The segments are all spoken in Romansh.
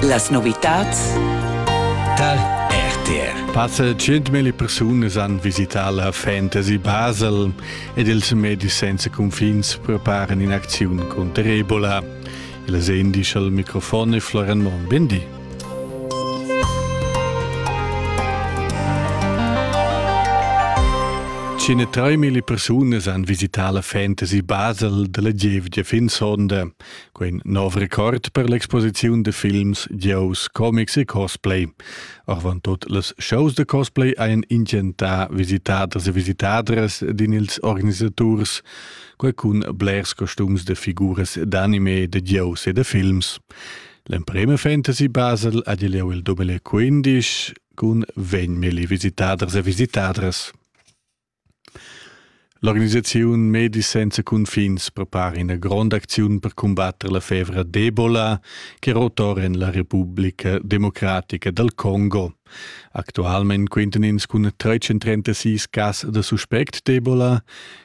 Las novitads Tal RTR. Passa 100.000 persunas han visità la Fantasy Basel ed ils medis senza cunfins preparen in'acziun contro Ebola. Il indice al microfon è Florian Monn. Bindi. Cine 3.000 persunas han visità la Fantasy Basel della gievgia fin sonda. Quin nov record per l'exposiziun de films, giows, comics e cosplay. Avantut les shows de cosplay ein intgentà visitaders e visitadres din ils organisaturs, quei cun blers costums de figuras d'anime, de giows e de films. L'emprema fantasy Basel ha leu il 2015 cun vegn milli visitaders e visitadres. L'organisaziun Medis senza cunfins prepara ina gronda acziun per cumbatter la fevra d'Ebola che rotor en la Republica democratica dal Congo. Actualmein quintan ins cun 336 cas da suspect d'Ebola,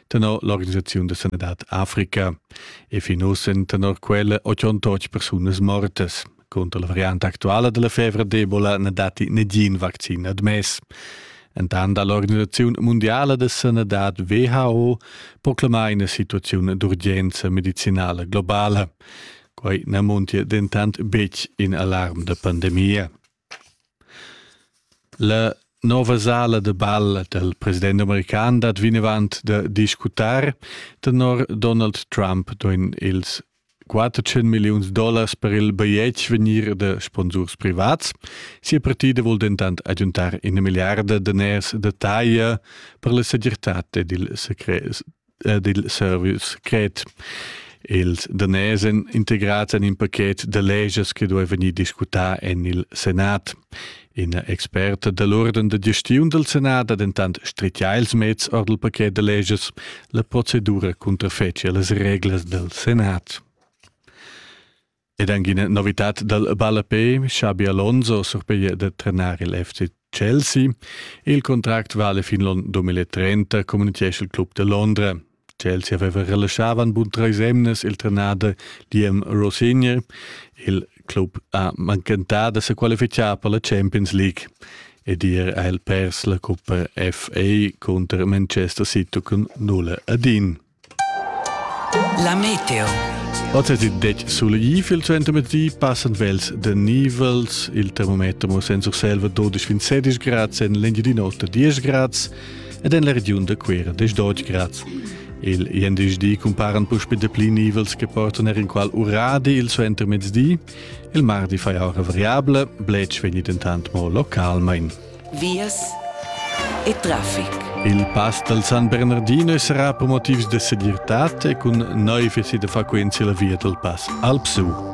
tenor l'organisaziun da sanadad Africa. E fin uss èn tenor quella 88 persunas mortas, Cunter la variante actuala della fevra d'Ebola ne datti negin vaccin admess. Entant ha l'Organisazione Mondiale de Sanität WHO proclamà una situazione d'urgenza medicinale globale. Quai ne montia dentant betg in alarm de pandemia. La nova sala de ball del president american dat vinavant de discutar tenor Donald Trump doen ils 400 milliuns dollars per il bajetg vegnir da sponsurs privats. Sia partida vul dentant agiuntar ina milliarda daners da taglia per la segirtad ed il, secret, ed il service secret. Ils daners integrads en in pacchet da leges che duai vegnir discutà en il Senat. Ina experta dall urden da gestiun dal Senat ha dentant stritgà ils meds or dal paquet da leges. La procedura cunterfetgia las reglas dal Senat. Ed anche una novità dal Ballapé, Xabi Alonso surpiglia da trenar il FC Chelsea. Il contract vale fin l'on 2030, communichesce il club de Londra. Tschels haveva relaschavan bun treis emnas il trenader Diem Rosenier. Il club ha manchentà da se qualificar per la Champions League ed ier ha el pers la Coppa FA contro Manchester City cun 0 ad 1. La Meteo Oz è il dec sul Gifil zu Entermedi passen vels de Nivels. Il termometer mo senza Selva 12 fin 16 grad, sen l'Engiadin'Ota 10 grad. ed en la regiun da Cuera des Deutsch Graz. Il INDSD cumparan puspe dapli nivels che portan er in qual uradi il suo intermezdi. Il mardi fai ora variabile, blech vegni dentant mo localmain. Vias e traffic. Il pass dal San Bernardino sarà per motivs de segirtad e cun neu fesi da frequenzi la via dal pass Alpsu.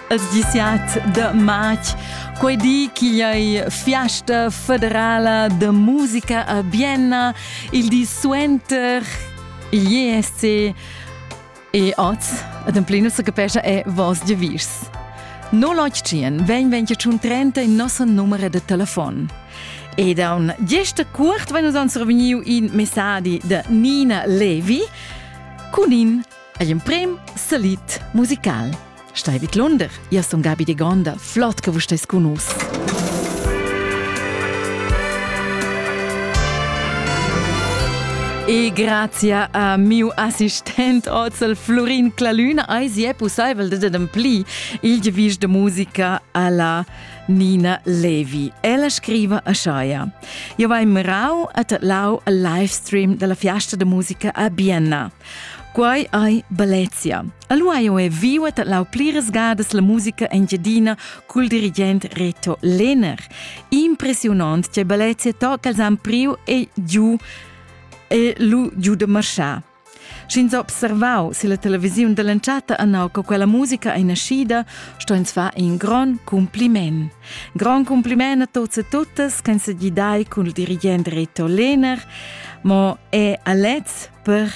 els diciat de matg quei di chi ei fiasta federala de musica a Vienna il di suenter IESC e oz ademplino se capescha è vos de vis. No lotgien, ven ven che un 30 in nosso numero de telefon. E da un gesta curt ven uns on surveniu in messadi de Nina Levi cun in Ei emprem salit musical. Stai vid Lunder, ia sun Gabi de Gonda, flott che vus stes cun us. E grazie a miu assistent Ozel Florin Clalün ai si è possibel de ademplir il devis de musica alla Nina Levi. Ella scriva a Shaia. Io vai mirau at lau al livestream della fiasta de musica a Bienna. Quai ei Bellezia. Allora io è viva dat lau pliras gadas la musica engiadina col dirigent Reto Lehner. Impressionant che Bellezia tocca els han priu e giu e lu giu de marschar. Sch'ins observau se la televisiun dell'entschatta annau che quella musica è nascida, sto ins far in gran compliment. Gran compliment a tots e totes che se gidai col dirigent Reto Lehner, ma è a lez per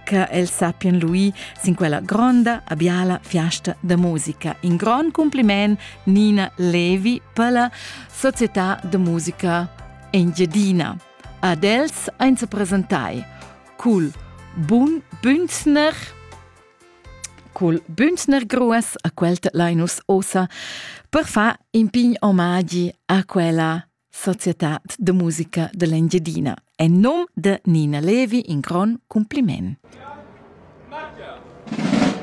che els sappien lui sin quella gronda a biala fiasta da musica. In grond compliment Nina Levi per la Società de Musica Engiadina. Ad els ein se presentai cul bun Bünzner cul Bünzner Grues a quelt Linus Osa per fa in pign omagi a quella Societad de musica dell'Engiadina. En num de Nina Levi in gron cumpliment.